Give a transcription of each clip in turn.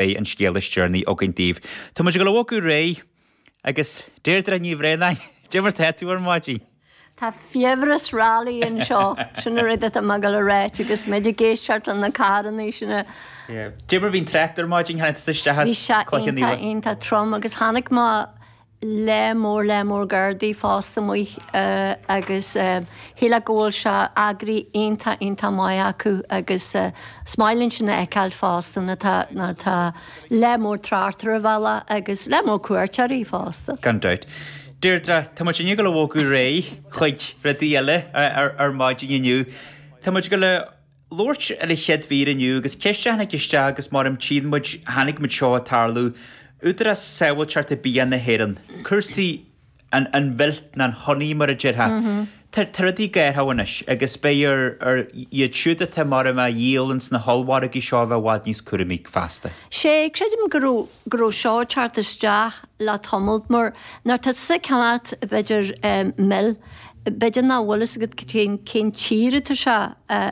Beidh an scéal is deireanaí againn daoibh. Tá muid ag dul a bhogadh ar aghaidh! Agus Deirdre Ní Bhraonáin, cad é mar tá tú ar maidin? Tá fiabhras rally anseo. Sin an rud atá mé dul a ráit agus muid ag éisteacht le na carrannaí sin a. Yeah. Cad é mar bhí an trácht ar maidin, tháinig tusa isteach as Cloich Cheann Fhaola. Bhí sé iontach iontach trom agus tháinig mo. lear mór lear mór Gardaí fásta amuigh agus shílfeá go bhfuil sé eagraithe iontach iontach maith acu agus is maith linn sin a fheiceáil fásta nuair atá nuair atá lear mór tráchta ar an bhealach agus lear mór cuairteoirí fásta. Gan dabht. Deirdre, tá muidinne ag dul a bhogadh ar aghaidh chuig rudaí eile ar maidin inniu. Tá muid ag dul a labhairt ar an chéad mhír inniu agus ceist a tháinig isteach agus mar a tchíonn muid chonaic muid seo ag tarlú, Údarás Sábháilteachta Bia na hÉireann, cúrsaí an an mhil nó an honey mar a déarfá. Tá tá rudaí ag athrú anois agus beidh ar ar iad siúd atá mar a a dhíol ins na hollmhargaí seo a bheith i bhfad níos cúramaí feasta. Sea, creidim go raibh go raibh seo ag teacht isteach le tamalt mar nuair atá tusa ag ceannacht b'fhéidir mil, B'fhéidir nach bhfuil a fhios agat cén tír atá sé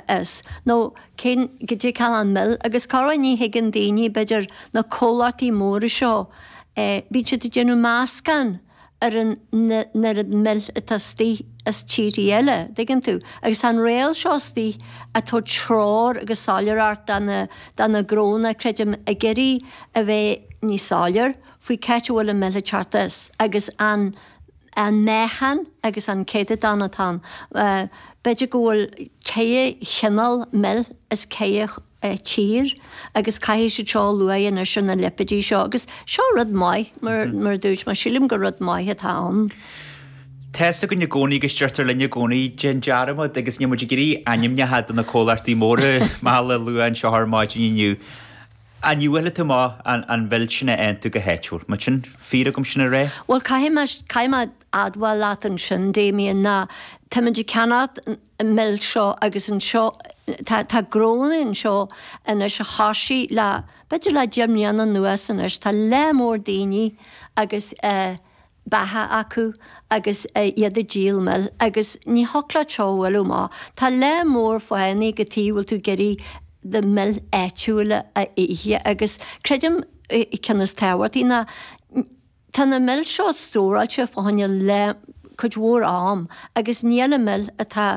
as, nó cén, cad é an cineál mil, agus cá raibh. Ní thuigeann daoine, b'fhéidir, na comhlachtaí móra seo, bíonn siad ag déanamh meascán ar an n-oiread mil atá istigh as tíorthaí eile, dtuigeann tú. Agus tá an riail seo istigh ag tabhairt treoir agus soiléireacht do na, do na gnónna, creidim, ag iarraidh a bheith níos soiléir faoi c'áit a bhfuil an mil ag teacht as, agus an. an meáchan agus an céatadán atá ann. B'fhéidir go bhfuil 4 chineál mil as 4 tír agus caithfidh siad seo a lua anois ar na lipéidí seo agus seo rud maith mar mar a dúirt mé sílim gur rud maith atá ann. Tá fhios againn i gcónaí agus deirtear linn i gcónaí déan dearmad agus níl muid ag iarraidh ainmneacha de na comhlachtaí móra meala a lua anseo ar maidin inniu. An bhfuil tú maith an mhil sin a aontú go háitiúil? Má sin fíor agam, sin a rá? Bhuel, caithfidh mé, caithfidh mé admháil leat ansin, Damien, ná táimid ag ceannacht an mhil seo agus anseo, tá, tá gnónna anseo anois a thosaigh le, b'fhéidir le deich mbliana anuas anois, tá lear mór daoine agus eh, beacha acu agus iad ag díol mil agus ní thiocfadh leat seo a bhfuil maith, tá lear mór fáthanna cad tuige a bhfuil tú ag iarraidh do mil áitiúil a ithe agus creidim ceann is tábhachtaí ná tá na mil seo stóráilte fá choinne cuid mhór am agus níl an mil atá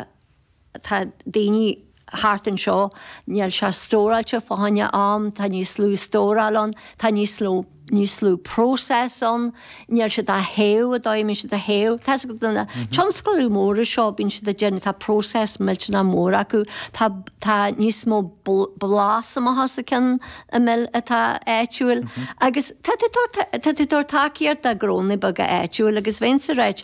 Tá daoine thart anseo, níl sé stóráilte fá choinne am, tá níos lú stóráil ann, tá níos lú, níos lú process ann, níl siad á théamh i dtoigh, bíonn siad á théamh, tá siad do na tionscadail mhóra seo, bíonn siad ag déanamh, tá process millteanach mór acu, tá, tá níos mó blas amach as an cheann an mil atá áitiúil, agus tá tú ag tabhairt, tá tú ag tabhairt tacaíocht do ghnónna beaga áitiúil, agus bheinnse ag ráit,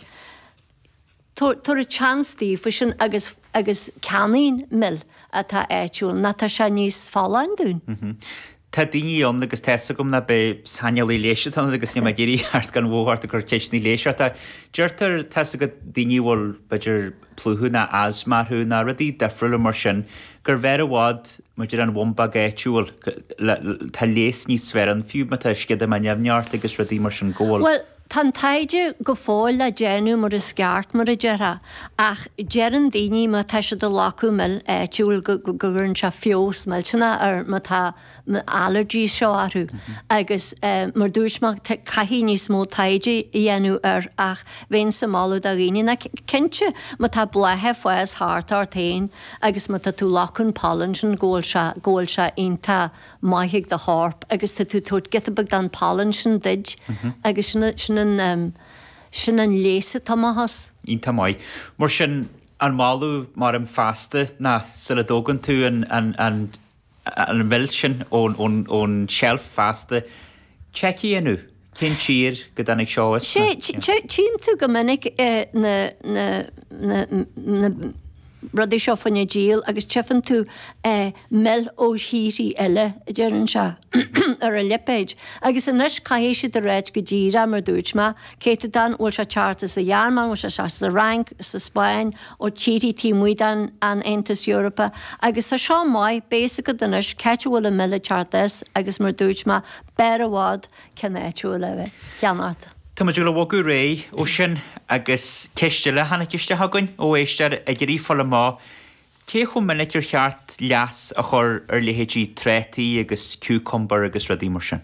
Tabhair a chance daofa sin agus agus ceannaígí mil atá áitiúil, nach tá sé níos folláin dúinn? Tá daoine ann, agus tá fhios agam nach saineolaí leighis atá ionat agus níl mé ag iarraidh teacht gan mhothú ort ag cur ceisteanna leighis ort ach deirtear, tá fhios agat, daoine a bhfuil b'fhéidir plúchadh ná asthma orthu ná rudaí difriúla mar sin gurbh fhearr i bhfad maidir an bhumbag áitiúil le tá leigheas níos fearr ann fiú má tá sceadamán nimhneach ort agus rudaí mar sin go bhfuil. Bhuel, Tá an taighde go fóill le déanamh mar is ceart, mar a déarfá, ach deireann daoine má tá siad ag glacadh mil áitiúil go gcuireann sé feabhas millteanach ar má tá na allergies seo orthu agus mar dúirt mé caithfidh níos mó taighde a dhéanamh air ach bheinnse ag moladh do dhaoine ná cinnte má tá blátha ag fás thart ort féin agus má tá tú ag glacadh an pollen sin go bhfuil sé go bhfuil sé iontach maith ag do chorp agus tá tú ag tabhairt giota beag den pollen sin duid agus sin an, sin an, sin an leigheas atá amach as. Iontach maith. Mar sin, an moladh mar sin feasta ná sula dtógann tú an, an, an, an mhil sin ón, ón, ón tseilf feasta, checkáil é. Cén tír a dtáinig seo as? Sea, tchím tú go minic na rudaí seo fá choinne díol agus tchifeann tú mil ó thíorthaí eile, a deir an sea, ar a lipéid. Agus anois caithfidh siad a ráit go díreach mar dúirt mé, céatadán, bhfuil sé ag teacht as an Ghearmáin, bhfuil sé ag teacht as an Fhrainc, as an Spáinn, ó tíorthaí taobh amuigh den Aontas Eorpach. Agus tá seo maith, beidh fhios agat anois, cá bhfuil an mil ag teacht as, agus mar dúirt mé, B'fhearr i bhfad ceann áitiúil a bheith ceannaithe. Tá muid ag gabháil a bhogadh ar aghaidh ó sin agus ceist eile a tháinig isteach againn ó éisteoir ag iarraidh fáil amach cé chomh minic ar cheart leasú a chur ar leithéidí trátaí agus cúcamar agus rudaí mar sin.